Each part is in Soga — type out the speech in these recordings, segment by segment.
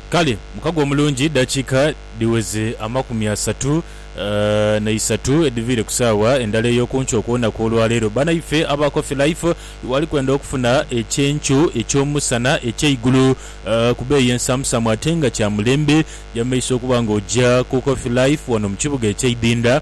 Kale mukago omulungi dakiika dhiweze amakumi asatu na isatu edhiviire ku saawa endala ey'okunkyo okw'olunaku olwaleero. Banaife aba Coffee Life wali kwenda okufuna ekyenkyo eky'omusana eky'eigulu ku beeyi ensamusamu ate nga kya mulembe. Jamaiso okuba nga oja ku Coffee Life wano mu kibuga eky'eidinda.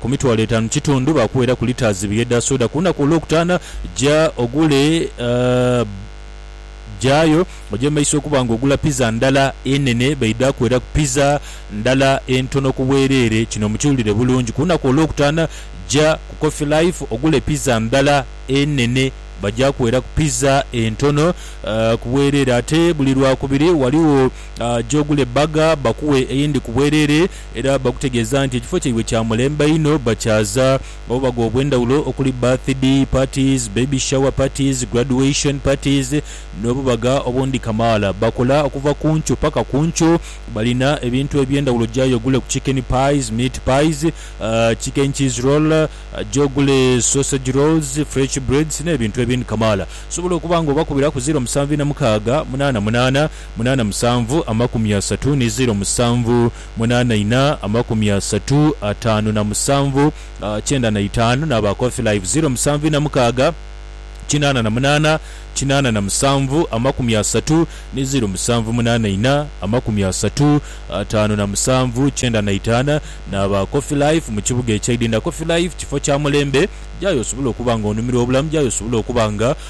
ku mitwalo etaanu kitundu, baakuweeraku litres ibiri edha soda. Ku lunaku olwokutaana, ja ogule gyayo oje mu maiso okuba ng'ogula pizza ndala enene. Baidha kuweeraku pizza ndala entono ku bwereere. Kino mukiwulire bulungi. Ku lunaku olwokutaana, ja ku Coffee Life ogule pizza ndala enene. Baja kuweeraku pizza entono ku bwereere. Ate buli Lwakubiri, ghaligho gy'ogule burger bakuwe eyindi ku bwereere. Era bakutegeeza nti ekifo kyaibwe kya mulembe inho, bakyaza obubaga obw'endhawulo okuli birthday parties, baby shower parties, graduation parties n'obubaga obundi kamaala. Bakola okuva ku nkyo paka ku nkyo. Balina ebintu eby'endhawulo jayo ogule ku chicken pies, meat pies, chicken cheese roll, gy'ogule sausage rolls, fresh breads n'ebintu ebindi kamaala. Osobola okuba nga obakubiraku ziro musanvu ina mukaaga munaana munaana. munaana musanvu amakumi asatu ni zeero musanvu munaana ina amakumi asatu ataanu na musanvu kyenda na itaanu n'aba Coffee Live zeero musanvu ina mukaaga kinaana na munaana kinaana na musanvu amakumi asatu ni zeero musanvu munaana ina amakumi asatu ataanu na musanvu kyenda na itaana n'aba Coffee Life mu kibuga ekya Idinda Coffee Life kifo kya mulembe gyayo osobole okuba nga onumirwa obulamu gyayo osobole okuba nga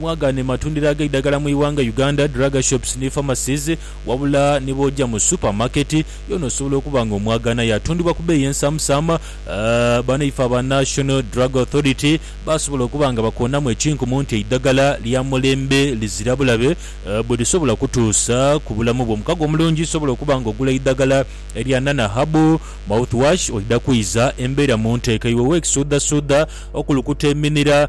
Mwagaane matundiro ag'eidagala mu ighanga Uganda, drug shops ni pharmacies, wabula ni bw'oja mu super market yoona osobola okuba nga omwagaana. Yatundibwa ku beeyi ensaamusaama, banaife aba National Drug Authority baasobola okuba nga bakoonamu ekinkumu nti eidagala lya mulembe lizira bulabe bwe lisobola kutuusa ku bulamu bwo. Omukago omulungi osobola okuba nga ogula eidagala erya Nana Herbal Mouthwash, oidha kwiza embeera mu nteeka iwe w'ekisuudhasuudha, okulukuta eminira,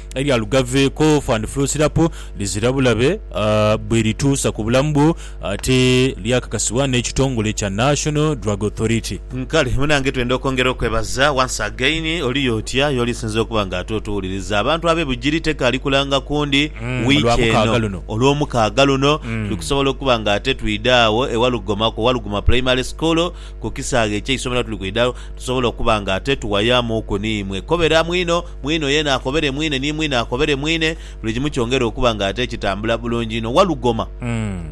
Elya lugaveeko fan flusirapu lizira bulabe bwe lituusa ku bulamu bwo ate lyakakasibwa n'ekitongole kya National Drug Authority. Kale munange twenda okwongera okwebaza once again oli otya yoli sinze okuba nga ate otuwuliriza abantu abe Bugiri teka ali kulanga kundi week eno olwomukaaga luno tuli kusobola okuba nga ate twidha agho ewa Lugoma ku Waluguma primary school ku kisaawe ekyeisomero tuli kwidha tusobola okuba nga ate tuwayamuuku niimwe koberamu inho Mwine oyo yena akobere mwine ni mwine akobere mwine, buli kimu kyongere okuba nga ate kitambula bulungi inho. Walugoma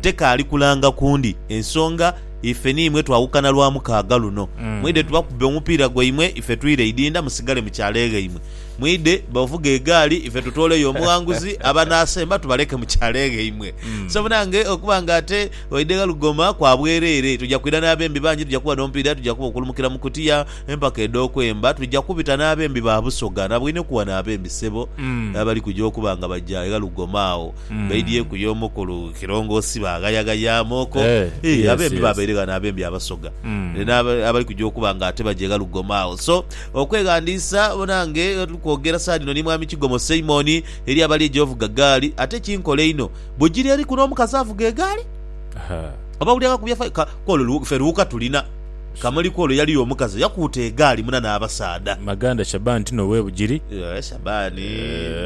tekaali kulanga ku ndi ensonga ife ni imwe twawukana Lwamukaaga luno. Mwidhe tubakube omupiira gwaimwe ife twire idinda musigale mu kyalo eghaimwe. Mwidhe ovuge egaali ife tutooleyo omughanguzi abanaasemba tubaleke mu kyalo eghaimwe. So munange okuba nga ate oidhe Walugoma kwa bwereere, tuja kwidha n'abembi bangi, tuja kuba n'omupiira, tuja kuba okulumukira mu kutiya. Empaka edh'okwemba twija kubita n'abembi ba Busoga na Bwinhiku wano abembi ssebo n'abali kuja okuba nga baja egha Lugoma agho baidhyeku y'omukulu Kilongoosi baaghayaghayamuuko. Eeh abembi babaire ghano abembi Abasoga n'abali kuja okuba nga ate baja egha Lugoma agho. So okweghandiisa nange tuli kwogera saha dhino ni Mwami Kigomo Simon eri abali ejo ovuga gaali. Ate kinkole inho bw'ogira eri kuno omukazi avuga egaali oba wulira nga akubye fire ka k'olwo ffe luwuka tulina. Kamuli kw'olwo yaliyo omukazi eyakuuta egaali muna n'abasaadha. Maganda Shaban ti n'ow'e Bugiri? Ee, Shaban.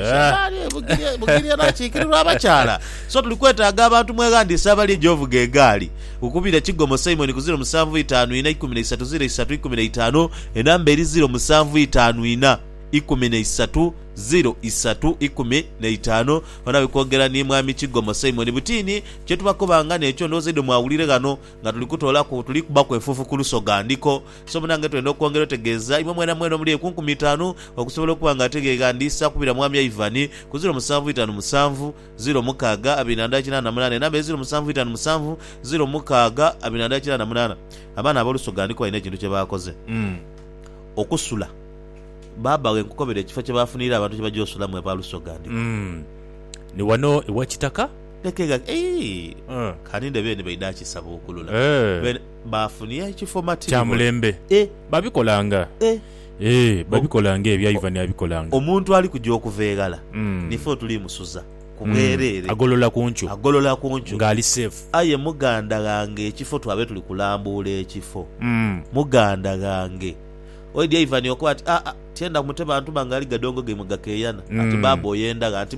Shaban e Bugiri, e Bugiri era akiikirirwa abakyala. So tuli kwetaaga abantu mweghandiise abali egy'ovuga egaali. Kukubira Kigomo Simon ku ziro musanvu itaanu inha ikumi na isatu ziro isatu ikumi na itaanu, enamba eri ziro musanvu itaanu inha ikumi na isatu ziro isatu ikumi na itaanu. Ghano abikoogera ni Mwami Kigomo Simon. Butini, kye tubakobanga n'ekyo ndowooza idho mwawulire ghano. Nga tuli kutoolaku, tuli kubbaku efuufu ku lusoga ndhiko. So munange twenda okwongera otegeeza imwe mwena mwena omuli eku nkumi itaanu okusobola okuba nga ateghegandiisa kubira Mwami Ivan ku ziro musanvu itaanu musanvu, ziro mukaaga, abiri na ndala kinaana na munaana. Enamba eye ziro musanvu itaanu musanvu, ziro mukaaga, abiri na ndala kinaana na munaana. Abaana ab'olusoga ndhiko balina ekintu kye baakoze. Okusula. Baaba ghe nkukobere ekifo kye baafuniire abantu kye bajja osulamu aba lusoga ndhiko. Ni wano ewa Kitaka. Leke gha, ii, Eh. kaninde beene baidha kisabuukulula. Eh. Beene baafunia ekifo matiribona. Kya mulembe. Eh. Babikolanga. Eh. Eh, babikolanga ebyo, aye Ivan abikolanga. Omuntu ali kuja okuva eghala, ni fe otuli musuza ku bwereere. Agolola ku nkyo. Agolola ku nkyo. Nga ali safe. Aye muganda ghange ekifo twabaire tuli kulambuula ekifo. Muganda ghange. Oidhi Ivan okoba ati, Aa, tyenda mute bantu bange ali gadongo gaimwe gakeeyana. Ati, Baaba oyenda gha? Ati.